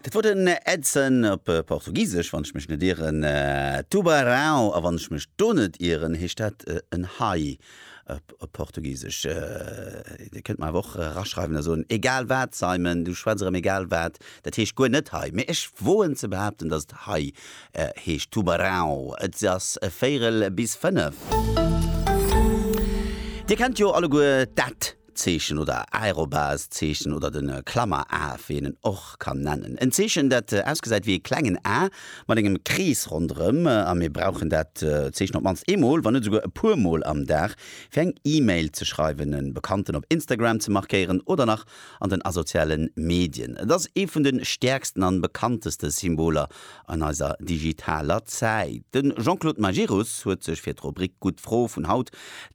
Dat wor den Edson, op Portugisesch, wann ech mech net ieren, Tubarão, a wann ech mech do net ieren, heescht dat en Hai op Portugisesch. Dir kënnt mer awer och eraschreiwen a soen, egal wat Simon, du schwätz erëm egal wat, dat heescht guer net Hai, mee ech woen ze behaapten, datt et Hai heescht, Tubarão. Et ass véierel bis fënnef. Dir kennt jo alleguer dat. Zeechen oder Aerobase Zeechen oder den Klammer A wéi een en och kann nennen. En Zeechen dat ausgesäit wéi ee klengen A mat engem Krees ronderëm a mir brauchen dat Zeechen op mannst eemol, wann net esouguer e puer mol am Dag fir eng E-Mail ze schreiwen, e Bekannten op Instagram ze markéieren oder nach an den asoziale Medien. Et ass ee vun de stäerksten an bekannteste Symboler an eiser digitaler Zäit. De Jean-Claude Majerus huet sech fir d'Rubrik Gutt Fro vun haut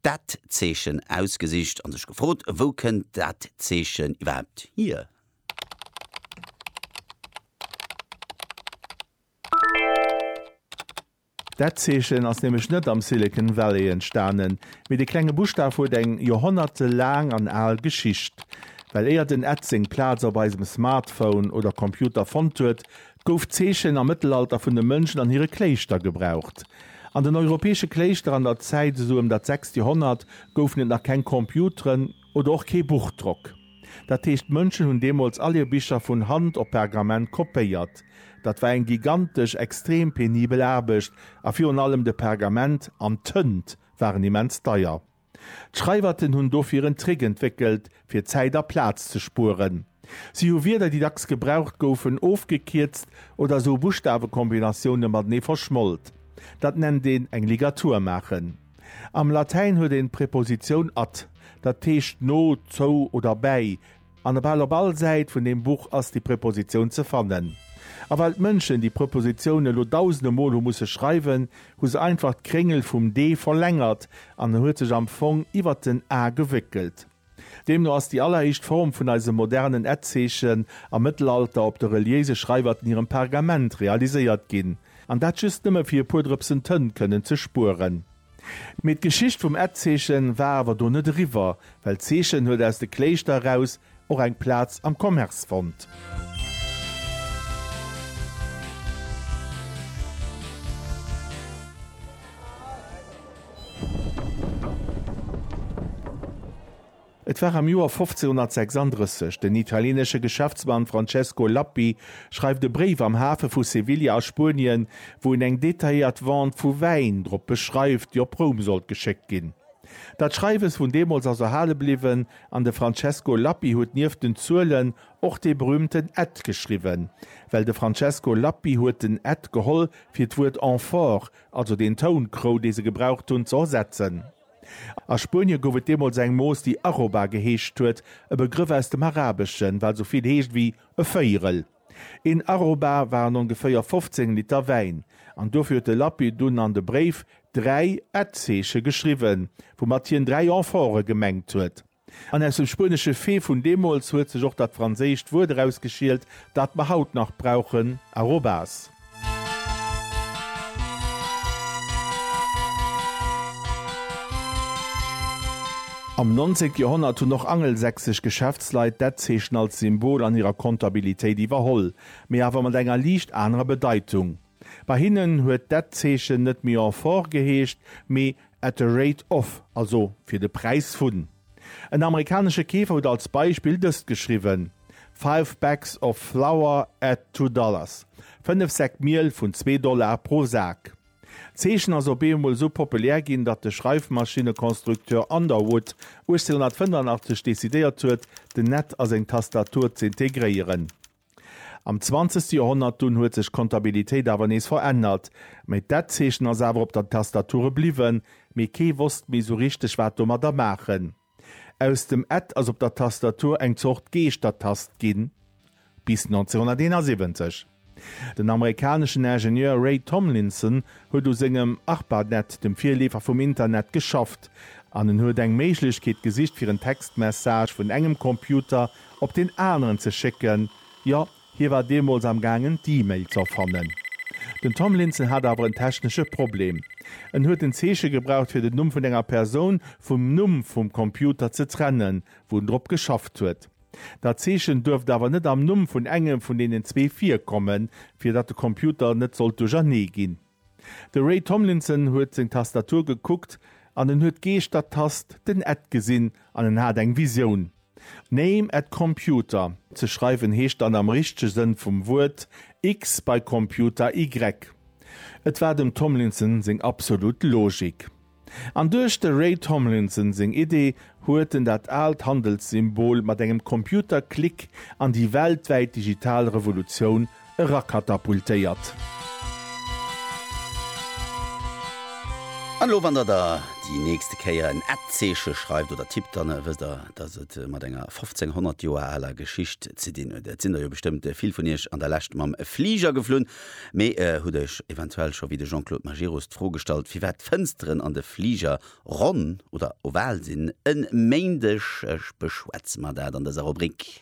Dat Zeechen ausgesicht a sech gefrot, Wou kënnt dat Zeechen iwwerhaapt hier? Dat Zeechen ass nämlech net am Silicon Valley entstanen, mee de klenge Buschtaf huet eng joerhonnertelaang an al Geschicht. Well éier den Ed seng Plaz op eisem Smartphone oder Computer fonnt huet, gouf d'Zeechen am Mëttelalter vun de Mönchen an hire Kléischter gebraucht. An den europäesche Kléischter an der Zäit esou ëm dat sechst Joerhonnert goufen et nach keng Computeren oder och kee Buchdrock. Dat heescht d'Mönchen hunn deemools all hir Bicher vun Hand op Pergament kopéiert. Dat war eng gigantesch, extrem penibel Aarbecht a virun allem de Pergament an d'Tënt waren immens deier. D'Schreiwerten hunn dofir en Trick entwéckelt, fir Zäit a Plaz ze spueren. Si hu Wierder, déi dacks gebraucht goufen, ofgekierzt oder esou Buschtawekombinatioune matenee verschmolt. Dat nennt een eng Ligatur maachen. Am Latäin huet een d'Prepositioun at, dat heescht no, zou oder bäi, An bal op all Säit vun deem Buch ass déi Prepositioun ze fannen. A well d'Mënschen déi Prepositioun elo dausende Mol hu musse schreiwen, hu se einfach d'Kréngel vum d' verlängert an en huet sech am Fong iwwert den a gewéckelt. Deemno ass déi alleréischt Form vun eisem modernen et-Zeechen am Mëttelalter op de reliéise Schreiwerten hirem Pergament realiséiert ginn, an dat just nëmme fir e puer Drëpsen Tënt kënnen ze spueren. Mee d'Geschicht vum Etzeechen war awer do net eriwwer, well d'Zeechen huet aus de Kléischter eraus och eng Plaz am Commerce fonnt. Et war am Joer 1536. Den italienesche Geschäftsmann Francesco Lappi schreift e Bréif am Hafe vu Sevilla a Spuenien, wou en eng detailléiert Vente vu Wäin drop beschreift, déi op Roum sollt geschéckt ginn. Dat Schreiwes vun deemools ass erhale bliwwen an de Francesco Lappi huet nieft den Zuelen och dee berüümten Ed geschriwwen, well de Francesco Lappi huet den Ed geholl, fir d'Wuert amphore, also den Tounkrou, dee se gebraucht hunn, ze ersetzen. A Spuenie gouf et deemools eng Mooss, déi Arroba geheescht huet, e Begrëff aus dem Arabeschen, wat esou vill heescht wéi e Véierel. Een Arroba waren ongeféier 15 Liter Wäin, an dofir huet de Lappi dunn an de Bréif dräi Ad-Zeeche geschriwwen, woumat hien dräi Amphore gemengt huet. An aus dem spuenesche Fee vun deemools huet sech och dat franséischt Wuert erausgeschielt, dat mer haut nach brauchen, arrobas. Am 19 Joerhonnert hunn och angelsächsesch Geschäftsleit dat Zeechen als Symbol an hirer Kontabilitéit iwwerholl, mee awer mat enger liicht anerer Bedeitung. Bei hinnen huet dat Zeechen net méi Amphore geheescht, mee At the rate of, also fir de Präis vun. En amerikanesche Keefer huet als Beispill dëst geschriwwen, Five bags of flour at two dollars, fënnef Säck Miel vun zwee Dollar pro Sak. D'Zeechen ass op eemol esou populär ginn, datt de Schreifmaschinnekonstrukteur Underwood 1885 decidéiert huet, den Net a seng Tastatur z'integréieren. Am zwanzegste Joerhonnert dunn huet sech d'Kontabilitéit awer nees verännert, mee d'Etzeechen ass awer op der Tastature bliwwen, mee kee wosst méi sou richteg wat domadder maachen. Aus dem Et ass op der Tastatur eng Zort Geeschtertast ginn. Bis 1971. Den amerikaneschen Ingenieur Ray Tomlinson huet u sengem Arpanet, dem Virleefer vum Internet, geschafft, an en huet eng Méiglechkeet gesicht fir en Textmessage vun engem Computer op deen aneren ze schécken, jo, hie war deemools am gaangen d'E-Mail z'erfannen. Den Tomlinson hat awer en technesche Problem, en huet en Zeeche gebraucht fir den Numm vun enger Persoun vum Numm vum Computer ze trennen, wou en drop geschafft huet. Dat Zeechen duerft awer net am Numm vun engem vun deenen zwee virkommen, fir datt de Computer net sollt duerchernee ginn. De Ray Tomlinson huet seng Tastatur gekuckt an en huet d'Geeschter-Tast, den Ed gesinn an en hat eng Visioun. Name at computer ze schreiwen heescht dann am richtege Sënn vum Wuert X bei Computer Y. Et war dem Tomlinson seng absolut Logik. An duerch de Ray Tomlinson seng Idee huet en dat aalt Handelssymbol mat engem Computerklick an déi weltwäit digital Revolutioun erakatapultéiert. An elo, wann der da déi nächste Kéier en Ad-Zeeche schreift oder tippt, dann wësst der, dass et mat enger 1500 Joer aler Geschicht ze dinn huet. Et sinn der jo bestëmmt vill vun iech an der Lescht mam Fliger geflunn. Mee e hutt Iech eventuell scho wéi de Jean-Claude Majerus d'Fro gestallt, firwat d'Fënsteren an de Fliger ronn oder oval sinn. E Méindeg beschwätze mer dat an dëser Rubrik.